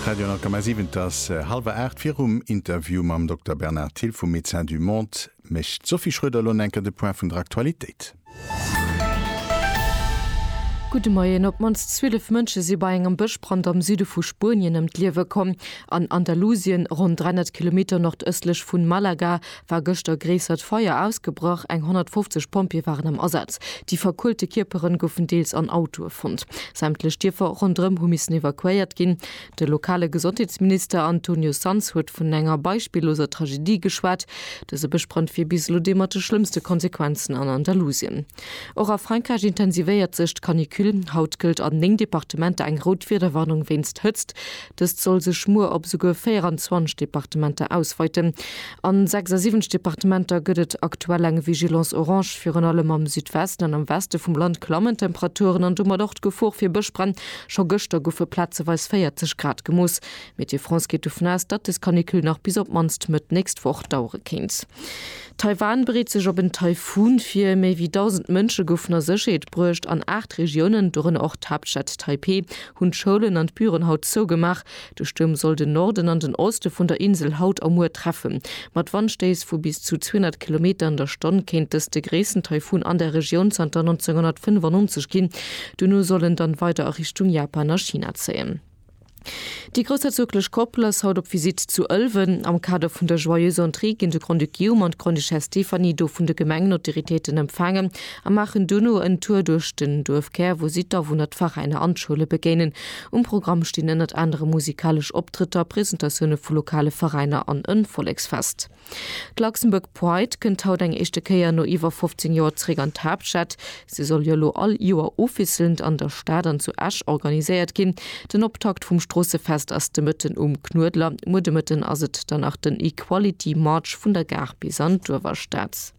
Radio Alkama 7, et ass hallwer 8. Virum Interview mam Dokter Bernard Thill vu Médecins du Monde mécht d'Sophie Schroeder elo enker de Point vun der Aktualitéit. Gudde Moien. Op d'mannst 12 Mënsche si bei engem Bëschbrand am Süde vu Spuenien ëm d'Liewe komm. An Andalusien, ronn 300 Kilometer nordëstlech vu Malaga, war gëschter gréissert Feier ausgebrach. Eng 150 Pompjeeë waren am Asaz. Déi verkuelte Kierpere goufen deels an Autoe fonnt. Sämtlech Dierfer ronderëm hu missen evakuéiert ginn. De lokale Gesondheetsminister Antonio Sanz huet vun enger beispilloser Tragedie geschwat. Dëse Bëschbrand wier bis elo dee mat de schlëmmste Konsequenzen an Andalusien. Och a Frankräich intensivéiert sech d'Canicule. Haut gëllt an 9 Departementer eng rout Wiederwarnung wéinst Hëtzt. Dëst soll sech muer op esouguer 24 Departementer ausweiten. A 76 Departementer gëtt et aktuell eng Vigilance orange. Virun allem am Südwesten an am Weste vum Land klammen d'Temperaturen an domat och d'Gefor fir Bëschbränn. Scho gëschter goufe plazeweis 40 Grad gemooss. Météo France geet dovun aus, datt des Canicule nach bis op d'mannst Mëtt nächst Woch dauere kéint. Taiwan bereet sech op en Taifun vir. Méi wéi 1.000 Mënsche goufen a Sécherheet bruecht. An aacht Regiounen, dorënner och d'Haaptstad Taipeh, hunn d'Schoulen an d'Büren haut zougemaach. De Stuerm soll den Norden an den Oste vun der Insel haut a muer treffen. Mat Wandstéiss vu bis zu 200 Kilometer an der Stonn kéint dëst de gréissten Taifun an der Regioun zanter 1995 ginn. Duerno soll en dann weider a Richtung Japan a China zéien. Déi groussherzoglech Koppel ass haut op Visitt zu Ëlwen. Am Kader vun der Joyeuse Entrée ginn de Grand-Duc Guillaume an d'Grande-Duchesse Stéphanie do vun de Gemengenautoritéiten empfaangen a maachen dono en Tour duerch den Duerfkär, wou si d'Awunner, d'Veräiner an d'Schoule begéinen. Um Programm stinn ënnert anerem musikalesch Optrëtter, Presentatioune vu lokale Veräiner an e Volleksfest. D'Luxembourg Pride kënnt haut eng éischte Kéier no iwwer 15 Joer zeréck an d'Haaptstad. Se soll jo elo all Joer ofwisselnd an der Stad an zu Esch organiséiert ginn. Den Optakt vum Stroossefest ass de Mëtten um Knuedler. Muer de Mëtten ass et dann nach den Equality March vun der Gare bis an d'Uewerstad.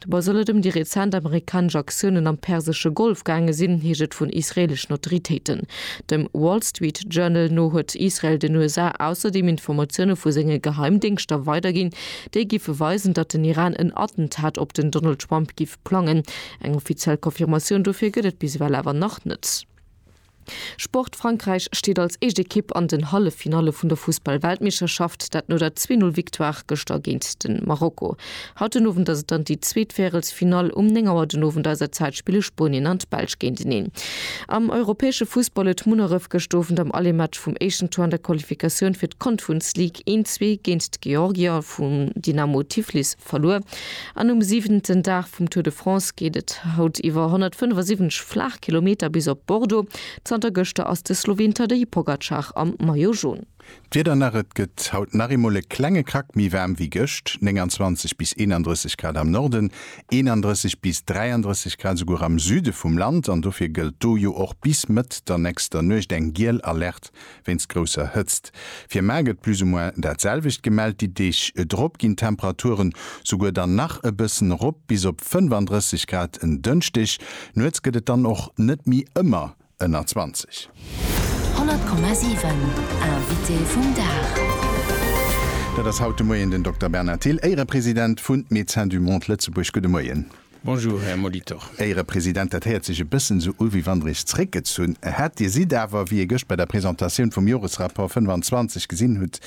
Dobei soll et ëm déi rezent amerikanesch Aktiounen am persesche Golf gaange sinn, heescht et vun israeeleschen Autoritéiten. Dem Wall Street Journal no huet Israel den USA ausserdeem Informatioune vu senge Geheimdéngschter weiderginn, déi giffe weisen, datt den Iran en Attentat op den Donald Trump giff plangen. Eng offiziell Confirmatioun dofir gëtt et bis ewell awer nach net. Sport, Frankräich steet als éischt Ekipp an den Halleffinalle vun der Fussball-Weltmeeschterschaft, dat no der Zwee-Null-Victoire gëschter géint de Marokko. Haut den Owend ass et dann déi zweet Värelsfinall. Um 9 Auer den Owend eiser Zäit spille Spuenien an d'Belsch géinteneen. Am europäesche Fussball huet Munneref gëscht Owend am Aller-Match vum éischten Tour an der Qualifikatioun fir d'Confrunce League een, zwee géint d'Georgier vum Dynamo Tiflis verluer. An um siwenten Dag vum Tour de France geet et haut iwwer 175 flaach Kilometer bis op Bordeaux. Zanter gëschter ass de Sloween Tadej Pogacar am Maillot Jaune. D'Wieder nach, Et gëtt haut nach eemol e klenge Krack méi waarm wéi gëscht, 29 bis 31 Grad am Norden, 31 bis 33 Grad esouguer am Süde vum Land. An dofir gëllt do jo och bis Mëtt der nächster Nuecht eng giel Alerte wéinst grousser Hëtzt. Fir Mar gëtt plus ou moins dat selwecht gemellt. Déi Deeg drop ginn d'Temperaturen souguer dann nach e bëssen erop, bis op 35 Grad en Dënschdeg. Nuets gëtt et dann och net méi ëmmer ënner 20. 100,7 Invité vum Dag. Dat ass haut de Moien den Dokter Bernard Thill, Éierepresident vun Médecins du Monde Lëtzebuerg. Gudde Moien. Bonjour, Här Molitor. Héiere President, dat héiert sech e bëssen esou u wéi wann Der Iech zréckgezunn hätt. Dir sidd awer, wéi ee gëscht bei der Presentatioun vum Joresrapport 25 gesinn hutt,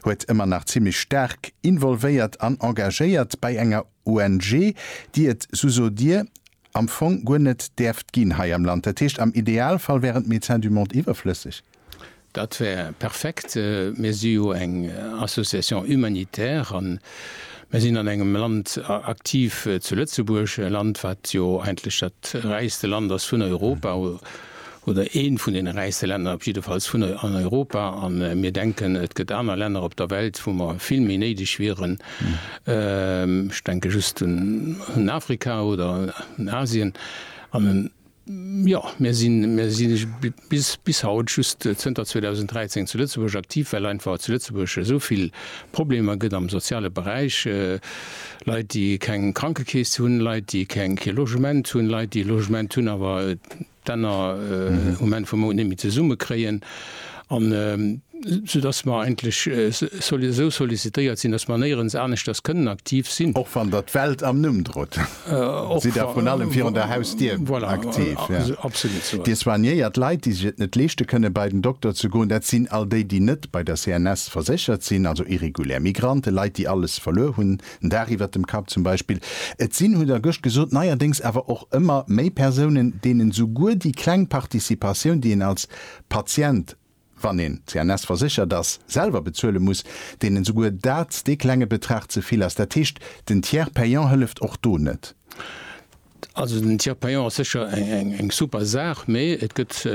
huet, ëmmer nach zimmlech staark involvéiert an engagéiert bei enger ONG, déi et, sou sot Dir, am Fong guer net däerft ginn hei am Land. Dat heescht, am Idealfall wären d'Médecins du Monde iwwerflësseg. Dat wär perfekt. Mir si jo eng Association humanitaire a mir sinn an engem Land aktiv, zu Lëtzebuerg, e Land, wat jo eigentlech dat räichste Land ass vun Europa oder eent vun deene räichste Länner op jiddefalls vun Europa. A mir denken, et gëtt aner Länner op der Welt, wou mer vill méi néideg wieren. Ech denke just un Afrika oder un Asien. Jo, mir sinn, mir si bis, bis haut just zënter 2013 zu Lëtzebuerg aktiv, well einfach zu Lëtzebuerg esou vill Problemer gëtt am soziale Beräich, Leit, déi keng Krankekeess hunn, Leit, déi keng, kee Logement hunn, Leit, déi e Logement hunn, awer d'Enner um Enn vum Mount net méi zesummekréien. An esou dass mer eigentlech esou sollicitéiert sinn, dass mer néierens aneschters kënnen aktiv sinn. Och wann Der d'Welt am Numm drot, sidd Der vrun allem virun der Hausdier aktiv. Dir soignéiert Leit, déi sech et net leeschte kënnen, bei den Dokter ze goen. Dat sinn all déi, déi net bei der CNS verséchert sinn, also irregulär Migranten, Leit, déi alles verluer hunn, en Daach iwwert dem Kapp zum Beispill. Et sinn, hutt Der gëscht gesot, neierdéngs awer och ëmmer méi Persounen, deenen souguer déi kleng Participatioun, déi een als Patient, wann een CNS verséchert ass, selwer bezuele muss, deenen esouguer dat, dee klenge Betrag ze vill ass. Dat heescht, den Tiers payant hëlleft och do net. Also den Tiers payant ass sécher eng super Saach, mee et gëtt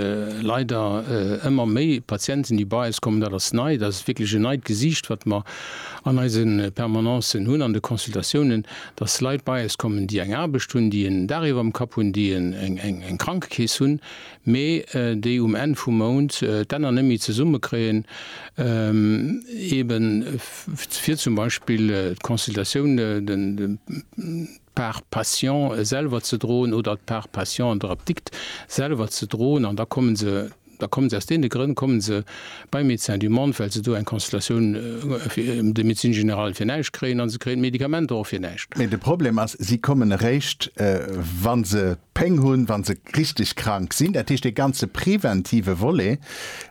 leider ëmmer méi Patienten, déi bei eis kommen. Dat ass nei, dat ass wierklech en neit Gesiicht, wat mer an eise Permanencen hunn, an de Consultatiounen, dass Leit bei eis kommen, déi eng Aarbecht hunn, déi en Dag iwwerm Kapp hunn, déi eng Krankekeess hunn. mee déi um Enn vum Mount d'Enner net méi zesumme kréien, ebe fir zum Beispill d'Consultatioun, d'Part patient selwer ze droen oder d'Part patient an der Apdikt selwer ze droen. An da kommen se, da kommen se aus deene Grënn kommen se beim Médecin du monde, well se do eng Consultatioun de médecine générale fir näischt kréien a se kréien d'Medikamenter och fir näischt. Mee de Problem ass, si kommen eréischt, wa se Péng hunn, wa se richteg krank sinn. Dat heescht, dee ganze preventive Volet,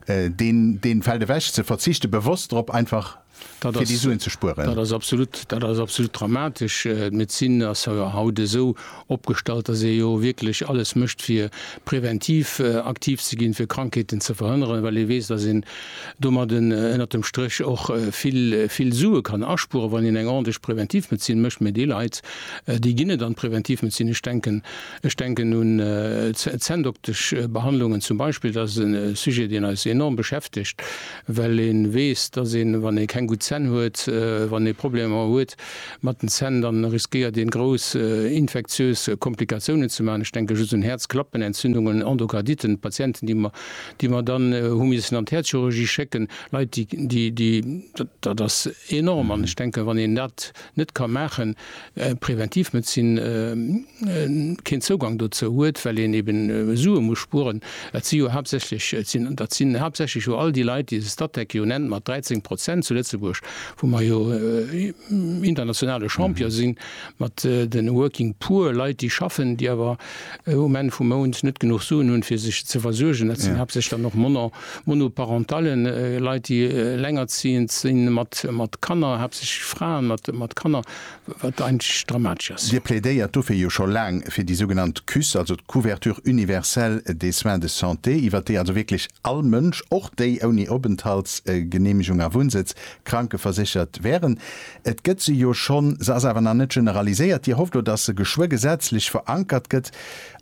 dee fält ewech. Se verzichte bewosst drop, einfach fir déi Suen ze spueren. Dat ass absolut, dat ass absolut dramatesch. D'Medezin ass jo haut esou opgestallt, datt ee jo wierklech alles mécht, fir preventiv aktiv ze ginn, fir Krankheeten ze verhënneren, well ee weess, datt een domat ënnert dem Stréch och vill, vill Sue kann aspueren, wann een eng ordentlech Preventivmedezin mécht. Mee déi Leit, Déi ginn et an d'Preventivmedezin. Ech denken, ech denken un d'Zänndoktesch Behandlungen zum Beispill. Dat ass e Sujet, deen eis enorm beschäftegt, well ee weess, dass een, wann ee keng gutt Zänn huet, wann ee Problemer huet mat den Zänn, da riskéiert een, grouss infektiös Komplikatiounen ze maachen. Ech denke just un Häerzklappenentzündungen, Endokarditen, Patienten, déi mer, déi mer dann hu missen an d'Häerzchirurgie schécken. Leit, déi, déi, déi, dat ass enorm. An ech denken, wann een dat net ka maachen, Preventivmedezin keen Zougang dozou huet, well een eben Sue muss spueren. Et si jo haaptsächlech, et sinn, dat sinn haaptsächlech jo all déi Leit, déi se Statec jo nennt mat 13 Prozent zu Lëtzebuerg, wou mer jo internationale Champion sinn mat de working poor, Leit, déi schaffen, déi awer um Enn vum Mount net genuch Suen hunn, fir sech ze versuergen. Dat sinn haaptsächlech dann och Monner. Monoparentallen, Leit déi elengerzieend sinn, mat Kanner, haaptsächlech Fraen mat Kanner, wat eigentlech dramatesch ass. Dir plädéiert dofir jo scho laang fir déi sougenannt CUSS, also d'Couverture universelle des soins de santé, iwwert déi also wierklech all Mënsch, och déi ouni Openthaltsgeneemegung a Wunnsëtz, krankeverséchert wären. Et gëtt se jo schonn, se ass awer nach net generaliséiert. Dir hofft elo, datt se geschwë gesetzlech verankert gëtt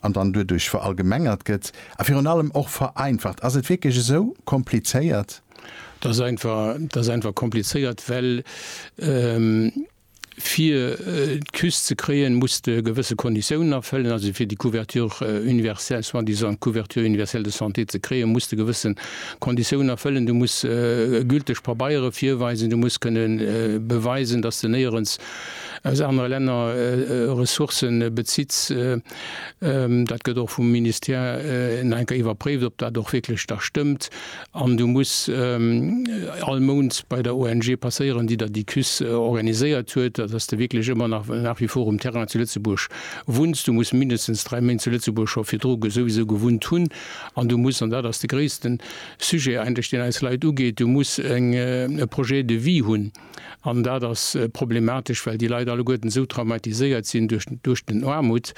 an dann duerduerch verallgemengert gëtt. A virun allem och vereinfacht. Ass et wierklech esou komplizéiert? Et ass einfach, et ass einfach komplizéiert, well fir d'Küst ze kréien, muss de gewësse Konditiounen erfëllen. Also fir déi Couverture universelle, soi-disant Couverture universelle de santé ze kréien, muss de gewësse Konditiounen erfëllen. Du muss gülteg Pabeiere virweisen, du muss kënne beweisen, dass de néierens aus anere Länner Ressourcë bezitts. Dat gëtt och vum Ministère nach eng Kéier iwwerpréift, ob dat och wierklech da stëmmt. An du muss all Mount bei der ONG passéieren, déi der déi Cuisse organiséiert huet, dass de wierklech ëmmer nach nach wie vor um Terrain zu Lëtzebuerg wunns. Du muss mindestens dräi Méint zu Lëtzebuerg scho virdru souwisou gewunnt hunn. An du muss, an dat ass de gréissten Sujet eigentlech, deen eis Leit ugeet, du muss e Projet de vie hunn. An dat ass problematesch, well déi Leit alleguerten esou traumatiséiert sinn duerch den Aarmut,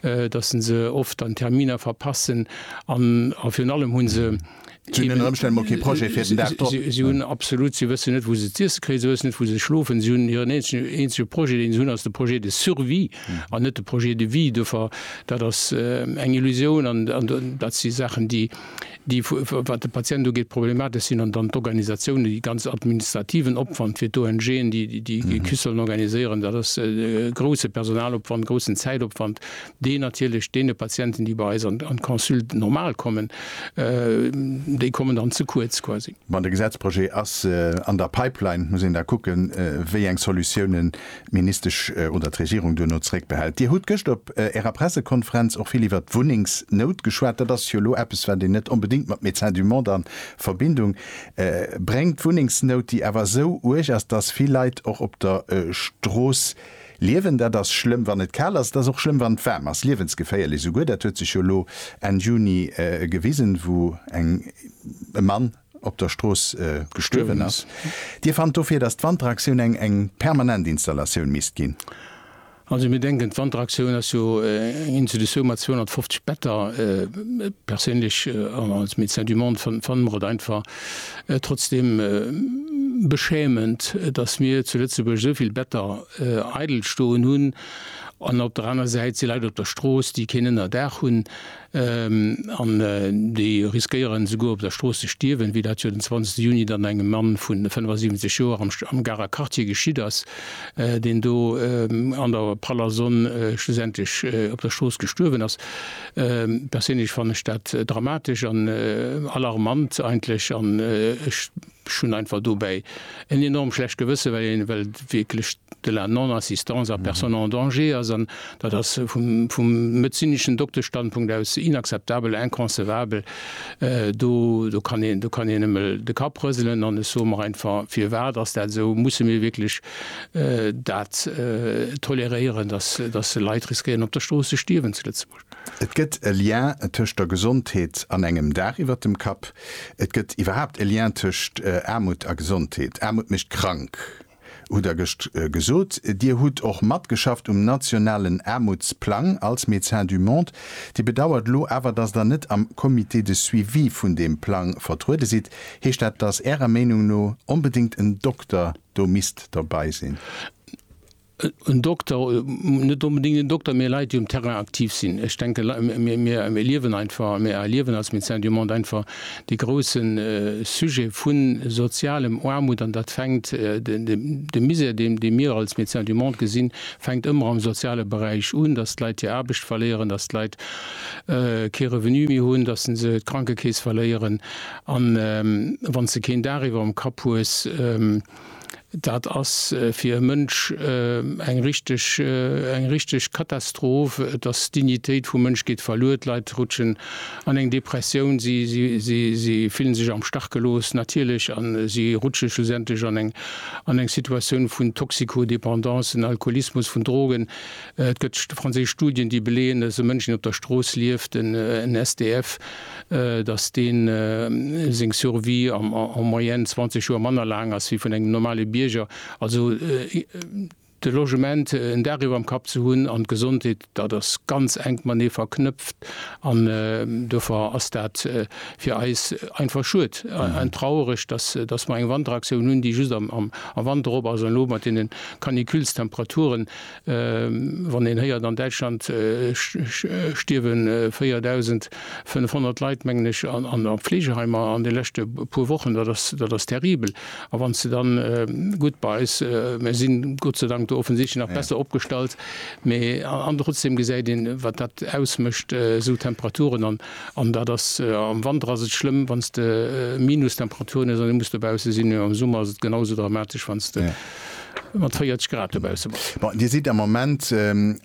dass se se oft dann d'Terminer verpassen an virun allem hu se, si hunn absolut, si wëssen net, wou se z'iesse kréien, si wëssen net, wou se schlofen, si hunn hiren eenzege Projet, deen se hunn, ass de Projet de survie an net de Projet de vie. Dofir, dat ass eng Illusioun an dat si Saachen, déi déi, wat de Patient ugeet, problematesch sinn, an dann d'Organisatiounen, dee ganz administrativen Opwand fir d'ONGen, déi déi Ecu sollen organiséieren, dat ass e grouse Personalopwand, e groussen Zäitopwand, deen natierlech deene Patienten, déi bei eis an d'Consulte normale kommen, déi kommen dann ze kuerz quasi. Bon, de Gesetzprojet ass an der Pipeline, muss een da kucken, wéi eng Solutiounen d'Ministesch oder d'Regierung duerno zréckbehält. Dir hutt gëscht op Ärer Pressekonferenz och vill iwwert d'Wunnengsnout geschwat. Dat ass jo elo eppes, wat een net onbedéngt mat Médecins du Monde a Verbindung bréngt. D'Wunnengsnout, déi awer esou uerg ass, dass vill Leit och op der Strooss liewen. Dat ass schlëmm, wann et kal ass. Et ass och schlëmm, wann et waarm ass. Liewensgeféierlech esouguer. Dat huet sech jo elo Enn Juni gewisen, wou e Mann, op der Strooss gestuerwen ass. Dir fannt dofir, datt d'Wanteraktioun eng eng permanent Installatioun misst ginn? Also mir denken, d'Wanteraktioun ass jo eng Institutioun mat 250 Better. Perséinlech an als Médecin du Monde fanne mer et einfach trotzdeem beschämend, datt mir zu Lëtzebuerg esou vill Better eidel stoen hunn an op der aner Säit si Leit op der Strooss, déi keen Ënnerdaach hunn. An déi riskéieren esouguer op der Strooss ze stierwen, wéi dat jo den 20 Juni dann engem Mann vu 75 Joer am Garer Quartier geschitt ass, deen do an der praller Sonn schlussendlech op der Strooss gestuerwen ass. Perséinlech fannen ech dat dramatesch an alarmant eigentlech. Ech hunn einfach dobäi en enorm schlecht Gewësse, well een well wierklech de la Non-assistance à personnes en danger ass. An dat ass vum vum medezineschen Dokteschstandpunkt aus inakzeptabel, inconcevable. Do do kann een do kann een nëmme de Kapp rëselen. An ech soe mer einfach, Firwat ass dat esou? Musse mir wierklech dat toleréieren, dass dass Leit riskéieren op der Strooss ze stierwen zu Lëtzebuerg? Et gëtt e Lien tëscht der Gesondheet an engem Daach iwwert dem Kapp. Et gëtt iwwerhaapt e Lien tëscht Aarmut a Gesondheet. Aarmut mécht krank, hutt Der gëscht gesot. Dir hutt och matgeschafft um nationalen Aarmutsplang als Médecins du Monde. Dir bedauert elo awer, dass Der net am Comité de suivi vun deem Plang vertruede sidd. Heescht dat, dass Ärer Meenung no onbedéngt en Dokter do misst dobäi sinn? En Dokter, net onbedéngt en Dokter, mee Leit, déi um Terrain aktiv sinn. Ech denken, Lei, mir, mir erliewen einfach, mir erliewen als Médecins du Monde einfach dee grouse Sujet vu sozialem Aarmut. An dat fänkt, de, de, de Misère, deen, dee mir als Médecins du Monde gesinn, fänkt ëmmer am soziale Beräich un, datt d'Leit hir Aarbecht verléieren, datt d'Leit kee Revenu méi hunn, datt se d'Krankekeess verléieren. An wann s de keen Daach iwwerm Kapp hues, Dat ass fir e Mënsch eng richteg, eng richteg Katastroph. Et ass, d'Dignitéit vum Mënsch geet verluer, d'Leit rutschen an eng Depressioun, si, si, si, si fillen sech am Stach gelooss, natierlech, a si rutsche schlussendlech an eng, an eng Situatioun vun Toxicodépendance, en Alkoholismus, vun Drogen. Et gëtt franséisch Studien, déi beleeën, dass e Mënsch, deen op der Strooss lieft, en SDF, datt dee seng Survie en moyenne 20 Joer manner laang ass wéi vun engem normale Bierger. Also de Logement, en Daach iwwerm Kapp ze hunn an d'Gesondheet, dat ass ganz enk matenee verknëpft an dofir ass dat fir eis einfach schued an traureg, datt mer eng Wanteraktioun hunn, déi just am Wanter op ass an elo mat deene Caniculestemperaturen, Wann een héiert, an Däitschland stierwe 4.500 Leit, mengen ech, an a Fleegeheimer an de leschte puer Wochen, dat ass, dat ass terribel. A wann s de dann, gutt, bei eis, mir si Gott sei Dank do offensichtlech nach besser opgestallt, mä an trotzdeem gesäit een, wat dat ausmécht, esou Temperaturen. An, an dat ass, am Wanter ass et schlëmm, wann s de Minustemperaturen hues an du muss dobausse sinn, mä am Summer ass et genau esou dramatesch, wann s de. mat 40 Grad dobaussen bass. Bon, Dir sidd am Moment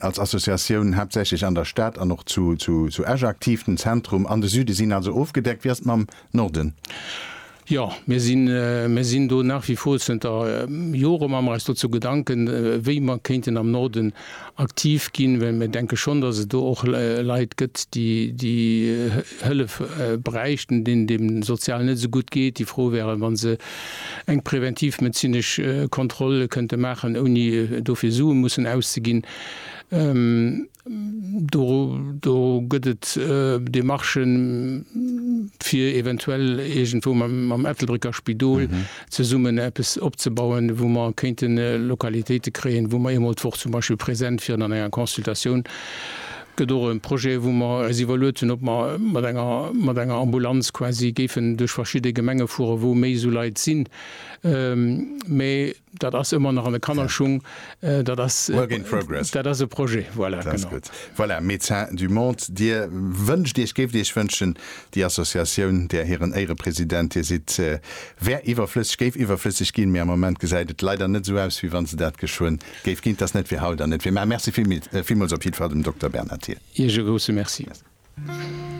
als Associatioun haaptsächlech an der Stad an och zu Esch aktiv. Den Zentrum an de Süde sinn also ofgedeckt. Wéi ass et mam Norden? Jo, mir sinn, mir sinn do nach wie vor zënter Jore, maache mer eis dozou Gedanken, wéi mer kéinten am Norden aktiv ginn, well mir denke schonn, dass et do och Leit gëtt, déi déi Hëllef bräichten, deenen et eben sozial net esou gutt geet, déi frou wären, wa se eng preventivmedezinesch Kontroll kënnte maachen, ouni dofir Sue mussen auszeginn. Do do gëtt et Demarchen, fir eventuell iergendwou mam Ettelbrécker Spidol, zesummen eppes opzebauen, wou mer kéinte Lokalitéite kréien, wou mer eemol d'Woch zum Beispill präsent wieren an enger Consultatioun. Et gëtt och e Projet, wou mer eis iwwerluet hunn, ob mer mat enger, mat enger Ambulanz quasi géifen duerch verschidde Gemenge fueren, wou méi esou Leit sinn. Mä dat ass ëmmer nach an de Kannerschung. Dat ass, dat ass e Projet. Voilà, genau. Voilà, Médecins du Monde, Dir wënscht Iech, géift Iech wënschen, Déi Associatioun, där hiren Éirepresident Dir sidd, wär iwwerflësseg, géif iwwerflësseg ginn, mee am Moment gesäit et leider net esou aus, wéi wa se dat geschwënn géif ginn. Et ass net fir haut an net fir mar. Merci villmools op jiddwer Fall dem Dokter Bernard Thill. Iech e grousse Merci.